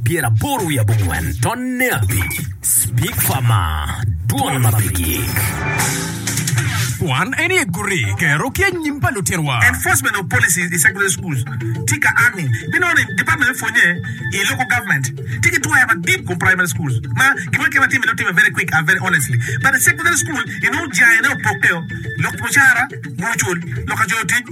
pyeraboro wiye abongwen, tonne abic, spikfa ma dwone ma pe gik. Kwan en iye guri kero ki anyim pa lutirwa. Enforcement of policies i secular schools tika army binono ni department me pwonye i local government tye ki twaya madit kom primary schools ma gin ma kema time time very quick and very honestly but secondary school inongo jayene opokke o lok mucara, gucul, lok ka coyo tic.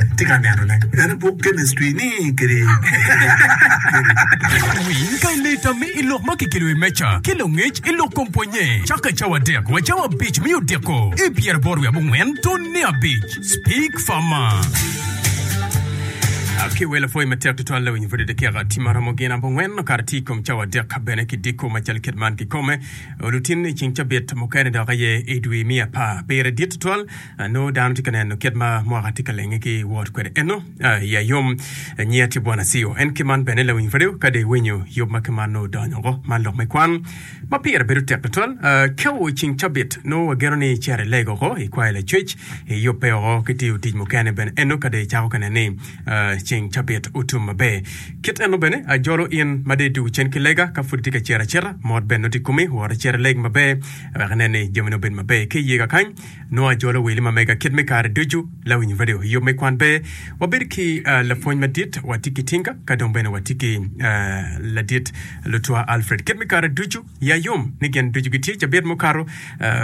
Atye ka neno ne en i buk chemistry ni kede. Winy pa i leta me i lok ma kikelo i wi meja ki langec i lok kom pwonye. Cakke cawa adek wa cawa abic me odiko i pyeraboro wiye abongwen tun ne abic. Speak farmer. Akiwelo pwoy matek tutwal lawiny bute dakika tye maromo gin abongwen kara tye i kom cawa adek ka bene ki diko macalo kit man kikome. Olutini cing cabit mukene dok aye i dwi me apar. Pire dit tutwal. Nongo dano tye ka neno kit ma mwaka tye ka lenge ki wot kwede. Eno, iya yom, nyiya tye Bwana Sio. En kiman bene lawiny Fareo, kadi winyo yub ma kiman nongo odonyo oko. Man lok me kwan ma pire bedo tek tutwal. Kau ceng cabit, nongo wageno ni icito ilego oko, ikwayo lacwec, iyubbe oko ki tiyo tic mukene bene. Eno, kadi icako ka neno ni ceng cabit otum maber. Kit eno bene, ajolo in ma dei duk cen ki lega, ka pud itye ka cito acita, mot bene noti i komi, wot icit ileg maber, wek inen ni jamini obed maber. Ki iyega kany, Nongo ajolo weli ma mega kit me kare ducu. Lawinyo bade oyub me kwan ber. Wabedo ki lapwony madit, watye ki tinga, ka dong bene watye ki ladit lutwa Alfred. Kit me kare ducu, ya yom ni gin ducu gitye. Cabit mukato,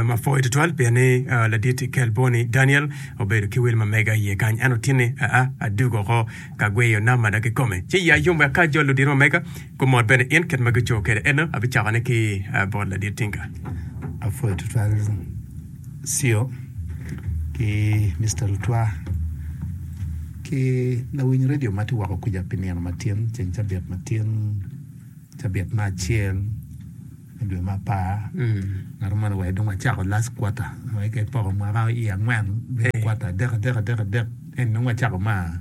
ma pwoyo tutwal pien ni ladit kel boni Daniel obedo ki weli ma mega iye kany. En otinne aa adugo oko ka gweyo nam ada kikome. Ci ya yom wek ka ajol ludito ma mega, Gumot bene in kit ma gicoyo kwede. Ento abicakone ki bot ladit tinga. Apwoyo tutwal Cio ki Mister Lutwa ki lawiny redio ma tye woko kwica pi nino ma tin, ceng cabit ma tin, cabit me acel me dwe me apar. Ngat moni wa dong wacako last quarter, wai ki poko mwaka i angwen, kwata adek adek adek adek, ento dong wacako ma.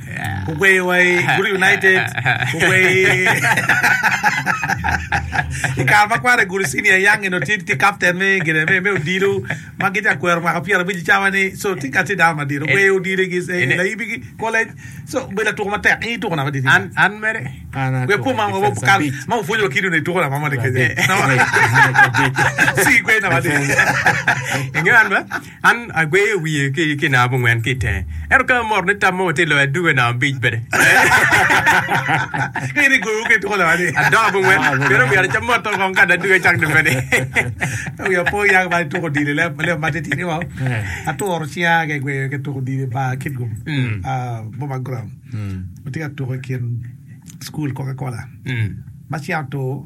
Gugweyo wa i Gudi United, gugweyo i i kare ma kwara i Gudi Senior Young eno tye tye captain me gine me me odilo ma gitye ka kwero mwaka pyera abic cawa ni so tye ka tye dano madit ogweyo odilo gi se- Ene- layibi gi college so obedo latuko matek i tuko na madit An, an mere. An atwero Gwe pum ma defense wakal abic. ma opwonyo wa kido ni tuko na ma moni kenya. Adek. An atwero abic. Si gwe na madit. Ingeyo an ba? An agweyo wiye ki i kinaa mungwen ki i tenge. Ento ka amoto ni tam mo watye loyo aduge namba abic bene. Ka in igoyo ki tuko lawa ni. Adoka mungwen, meno myero acam moto kong ka aduge cak dong bene. Ogi apo yaka bal tuko dili lem lem ma titidi ni wau. Aturo cinga ki gweyo ki tuko dili ba Kitgum, ah, Boma Ground. Watye ka tuko i kin school Coca Cola. Ma cinga otur,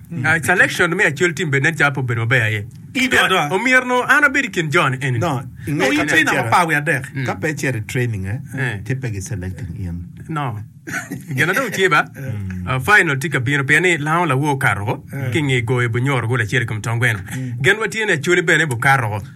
Selection me Acel Tim bene nen calo pe obedo maber aye. Omyero an abed i kin jo-ni eni. No, i nge ka pe icito. Ka pe icito i training, eh, ci pe gi selecting in. No. Gin na dong tye ba, final tye ka bino pien ni lango lawo okato ki nge goyo bunyoro gol acel i kom tong gweno. Gen watye ni Acholi bene bikato.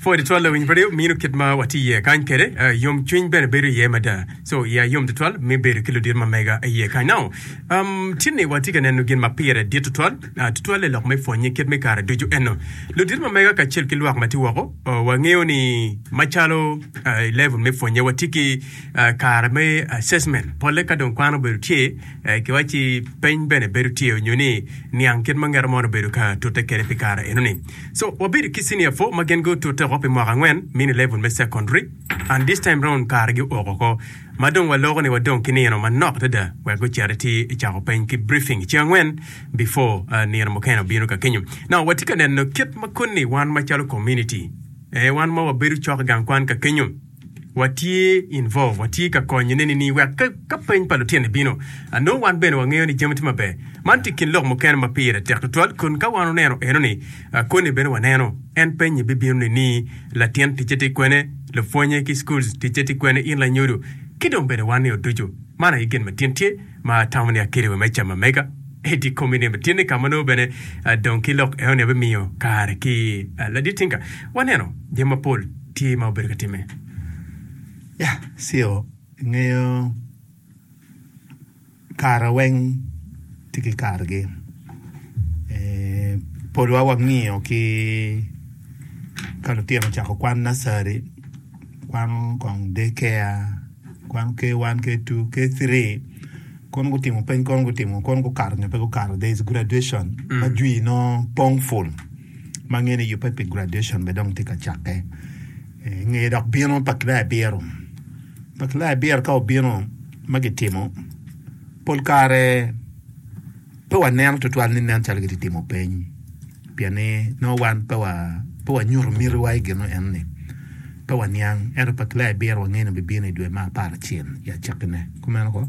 Pwod twal lawiny pe mino kit ma watye iye kany kwede, yomcwiny bene bedo iye mada. Co iya yom tutwal me bedo ki ludito ma mega iye kany. Nongo tinni watye ka neno gin ma pire dit tutwal, tutwalle lok me pwonnye kit me kare ducu. Ento ludito ma mega kacel ki lwak ma tye woko, wangeyo ni macalo i level me pwonnye watye ki kare me assessment, polle ka dong kwan obedo tye ki wacci peny bene bedo tye onyo ni niang kit ma ngete moni obedo ka tute kwede pi kare enoni. So wabedo ki senior four ma gin gutute oko pi mwaka angwen mini level me secondary and this time round kare gi oko oko ma dong waloko ni wadong ki nino manok adada wek gucit iti icako peny ki briefing ceng angwen before nino mukene obino ka kenyo. Now watye ka neno kit ma koni wan macalo community ee wan ma wabedo cok i gang kwan ka kenyo. watye involve, watye ka konyone ni wek ka peny pa lutino bino, anongo wan bene wangeyo ni jami tye maber. Man tye kin lok mukene ma pire tek tutwal kun ka wan oneno eno ni koni bene waneno. En penye bibino ni ni latin ticce tye kwene, lupwonye ki schools ticce tye kwene in lanyodo ki dong bene wan ni oducu. Man aye gin matin tye. ma atamo ni akele wa me cama mega edi i komi ni batini ka ma nongo bene dong ki lok eno ni abimiyo kare ki ladit tinka waneno jami mapol tye ma obedo ka timme. Ya, sio, ingeyo kare weng tye ki kargi. Eh, polwa wangiyo ki ka lutino ocako kwan nursery, kwano kong day care, Kwan K1 K2 K3 kono gutimo peny kono gutimo kono gukato nyo pe gukato there is graduation mm. ma jwi nongo pong full ma ngene yubbe pi graduation be dong tye ka cakke eh, nge dok bino pa kilaya biro pa kilaya biro ka obino ma gitimo pol kare Pe waneno tutwal ni nen calo gitye ka timo peny pien ni nongo wan pe wanyuto mitiwa i gin enoni. Pe waniang, ento pa Claire biro wangeyo ni bibino i dwe me aparacel i acakkine. Kumeno koo?